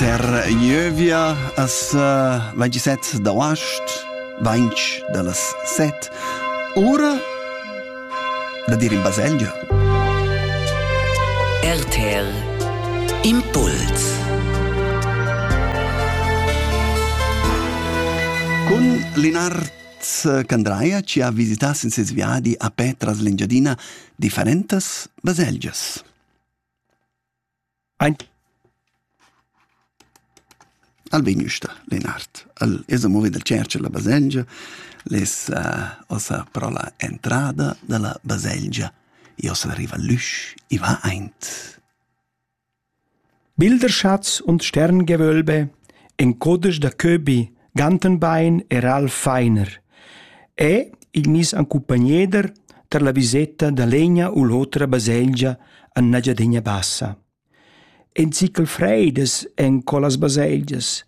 Ter Ieuvia as uh, vaingi set d'auast, vainch da las set, ora da dir in baselgia. RTL Impuls Con Linard Candraia ci ha visitas in ses viadi a Petras l'Engiadina differentas baselgias. Aint al vegn üsta Lenard. El esa movi dal tscherch illa baselgia, l'es ossa però la entrada da la baselgia. E ossa riva l'üsch, i va aint. Bilderschatz und Sterngewölbe, in codesch da Köbi, Gantenbein era Alf Feiner e il miss accumpagneder tar la viseta da legna u l'otra baselgia en Engiadina Bassa. En zichel freidas en quellas baselgias,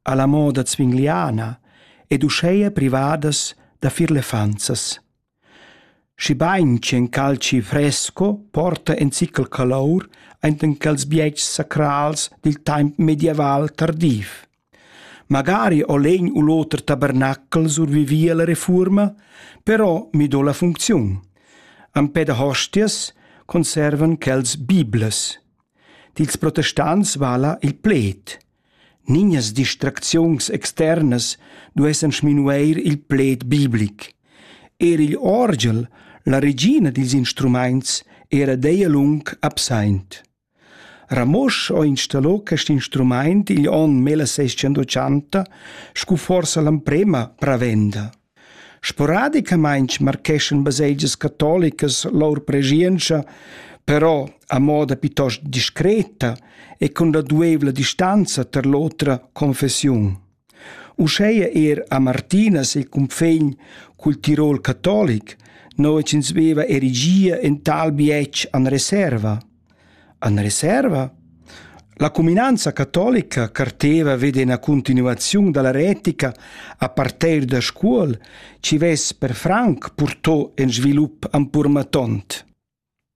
alla moda zwingliana ed uscheia privadas da fir lefanzas. Schibein ch'in calci fresco porta in zichel calour enten quels bietgs sacrals dil temps medieval tardiv. Magari ho l'egn u l'oter tabernacl survivi alla refuorma, però mi do la funcziun. Empè da hostias conservan quels biblas. Dils protestants vala il pled. Nignas distracziuns externas duessan sminueir il pled biblic. Er igl orgel, la regina dils instrumaints, era deia lung absaint. Ramosch ho installo quest instrumaint igl onn 1680 scu forsa l'amprema pravenda. Sporadicamaing marcheschan baselgias catolicas lur preschientscha, però a moda piitost discreta e cun raduevla distanza tar l'otra confessiun. Uscheia er a Martinas e cunfegn cul Tirol catolic, no ins veva erigia in tal bietsch an reserva. En reserva? La cuminanza catolica carteva ved ina continuaziun dalla retica a parter da Scuol, chi vess per franc purtò in svilup ampurmatont.